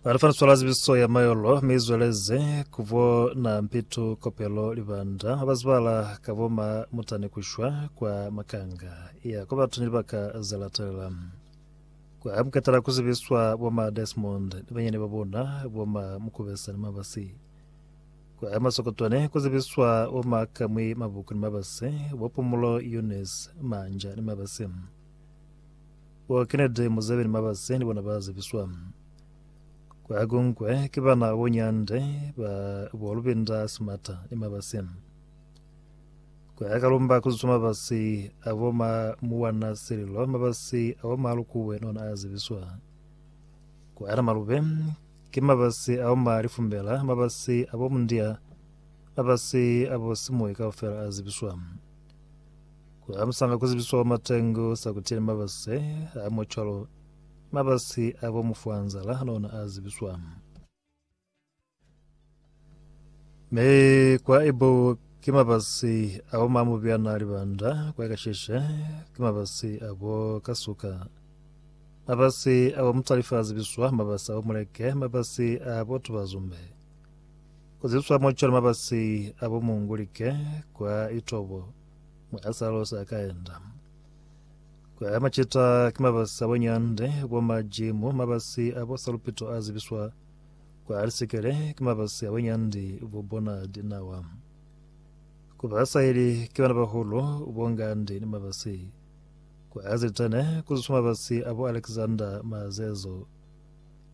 Re fana swala zibiso ya mayolo mi zweleze kubo na mpitu kopelo libanda abazibala ka bo ma mutane kushwa kwa makanga ya ko bathu ni libaka zelatelela kwa mukatala kuzibiswa bo ma Desmond ni banyane ba bona bo ma mukubesa ni mabasi kwa masokotwane kuzibiswa bo ma kamwi mabuku ni mabasi bo pumulo Eunice manja ni mabasi Bo Kennedy Museveni mabase ni bona ba zebiswa ku Agongwe ki bana bo Nyande ba bo Lubinda Simata ni mabase. Ku ya Kalumba ku ziswa mabasi a bo ma Muwana Sililo mabasi a bo ma Lukuwe ni ona a zebiswa. Ku ya Namalube ki mabasi a bo ma Lifumbela mabasi a bo Mundia mabasi a bo Simuyi kaufela a zebiswa. Ku halusanga ku zibiswa kwa matengo sa ku tile mabasi a mwa cwalo mabasi a bo mufwanzala lona a zibiswa. Me kwa ebo ke mabasi a bo mamubyana libanda kwa kasheshe ke mabasi a bo kasuka mabasi a bo mutalifa a zibiswa mabasi a bo muleke mabasi a bo tubazumbe Kuziswa mo cwalo mabasi a bo mungulike kwa itobo mwa a sa losa ka enda. Kwa macita ki mabasi a bo nyande, bo majimu, mabasi a bo salupito a zibiswa kwa lisikele ki mabasi a bo nyandi bo bona dinawa. Ku ba saheli ki bana bahulu bo ngandi ni mabasi. Kwa zitene, kuziswa mabasi a bo Alexander Mazezo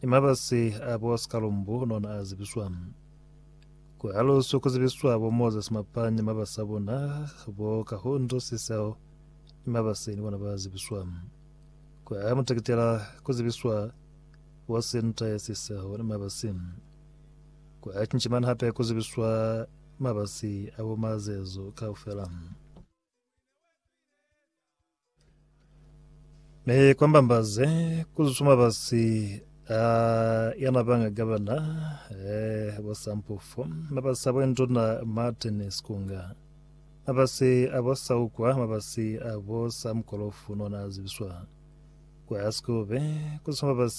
ni mabasi a bo Sikalumbu nona a zibiswa. Ku haluswi ku zibiswa bo Moses Mapang ni mabasi a bona, bo Kahundu Siseho ni mabasi ni bona ba zibiswa. Ku hae Mutekitela ku zibiswa bo Sintaye Siseho ni mabasi. Ku hae Cinchimani hape ku zibiswa mabasi a bo Mazezu kaufela. Ne kwambambaze kuzusuma basi a yana banga gabana eh bosampufo mabasi a bwenduna Martin Sikunga mabasi a bosaukwa mabasi a bosamkolofu nona azibiswa kwa sikube kuzusuma basi